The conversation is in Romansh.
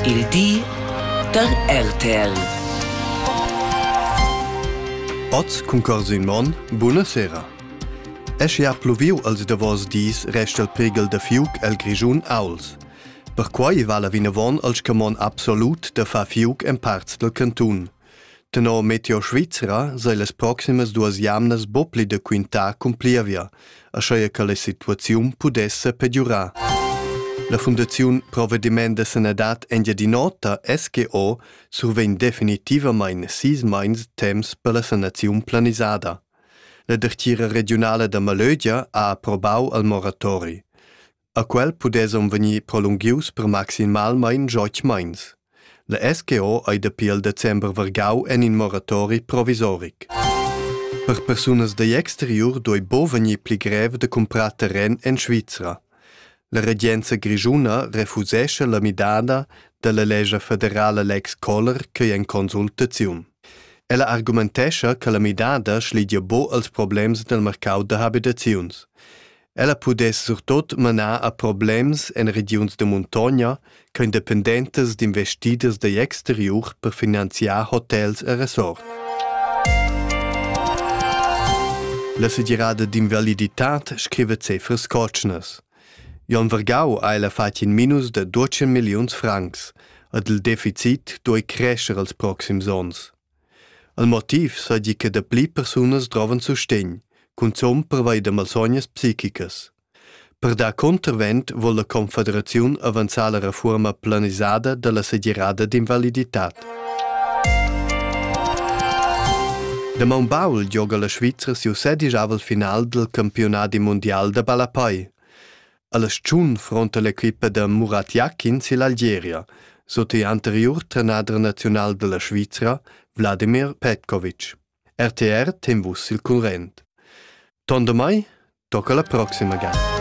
Il di da RTL. Oz cun Corsin Monn, buna sera. Esche ha pluviu als davos dis resta il prighel da fiuc el Grischun Auls. Perquai vala vinavon al scamon absolut da far fiuc en parts del cantun. Tenor Meteo Svizra sei las proximas duas jamnas buca pli da quintar cun plievia, aschia che la situaziun pudesse pegiurar. La Fundaziun Provvediment da sanadad Engiadin'Ota SGO survegn definitivamain sis mais temps per la sanaziun planisada. La dertgira regiunala da Malögia ha approbau al moratori. A quel pudessan vegnir prolunghius per maximalmain joch meins. La SGO ei dapi il december vargau en in moratori provisoric. Per persunas dagl exteriur doi bo vegnir pli grev da cumprar terren en Svizra. La regenza grischuna refusescha la midada dalla lescha federala Lex Kohler ch'ei en consultaziun. Ella argumentescha che la midada schlidia bo als problems nel mercau da habitaziuns. Ella pudess surtot manar a problems en regiuns da muntogna ch'ein dependentas d'investiders digl exteriur per finanziar hotels e resorts. La segirada d'invaliditad scrive cefras cotschnas. Jon Vergau ha ella fatg in minus de 12 milliuns francs, ed il deficit duei crescer els proxims onns. El motiv seigi che dapli persunas drovan sustegn, cunzun pervei da malsognas psichicas. Per dar contravent vol la Confederaziun avanzar la reforma planisada dalla segirada d'invaliditad. Da maun baul gioga la Svizra siu sedijavel final dil campionadi mundial da ballapei. A la stagiun fronta l'equipa da Murat Jakins ill'Algeria sut il anteriur trenader naziunal da la Svizra Wladimir Petkovic. RTR Temvus il current. Tondo mai, tocca la prossima gara.